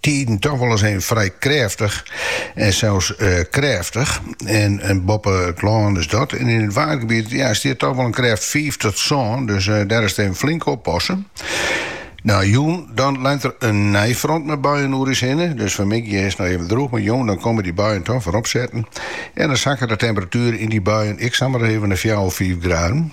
Tiden toch wolris even frij krêftich en sels krêftich. En boppe it lân is dat en yn it waargebiet ja, stiet toch wol in krêft fiif tot sân, dus dêr is it even flink oppasse. No jûn dan rint der in nij front mei buien oer ús hinne, dus fanmiddei is it noch even drûch, mar jûn dan komme dy buien toch wer opsetten. En dan sakke de temperatuer yn dy buien ek samar even nei fjouwer, fiif graden.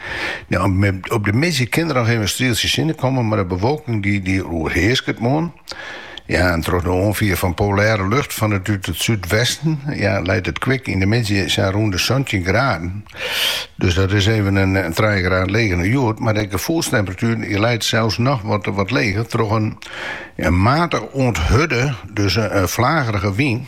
Ja, op de middei kin der noch even in strieltsje sinne komme, mar de bewolking dy dy oerhearsket moarn. Ja, en troch de oanfier fan polêre lucht fan it, út it súdwesten ja, leit it kwik yn de middei sa rûn de santjin graden. Dus dat is even in trije graden leger as hjoed, mar de gefoelstemperatuer dy leit sels noch wat wat leger troch in ja, matich oant hurde, dus in flagerige wyn.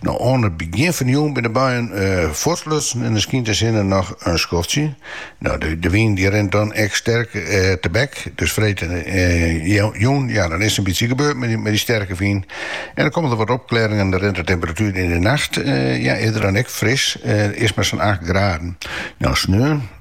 No, oan it begjin fan de jûn binne de buien uh, eh, fuortlutsen en dan skynt de sinne noch in skoftsje. No, de, de wyn die rint dan echt sterk uh, tebek. Dus freed uh, te jûn, ja, dan is it in bytsje bard mei dy, mei dy sterke wyn. En dan komme der wat opklearingen en dan rint de temperatuer yn de nacht, uh, ja, wurdt dan ek fris, uh, is mar sa'n 8 graden. No, sneon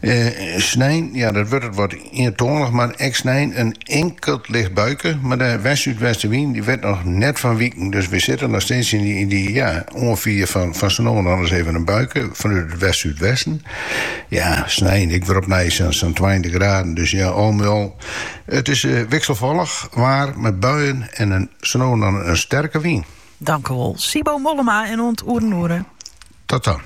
Eh, snein, ja, dat wurdt wat ientoanich, mar ek snein in inkeld licht buike. Mar de west-súdwestenwyn dy wit noch net fan wiken, dus we sitte noch steeds yn dy, yn dy ja, oanfier fan, fan sa no en dan ris even in buike fanút it west-súdwesten. Ja, snein, ek wer opnij sa'n 20 graden, dus ja, al mei al. It is uh, wikselfallich waar mei buien en in, sa no en dan in sterke wyn. Tankewol. Sibo Mollema en oant oer in oere. Tot dan.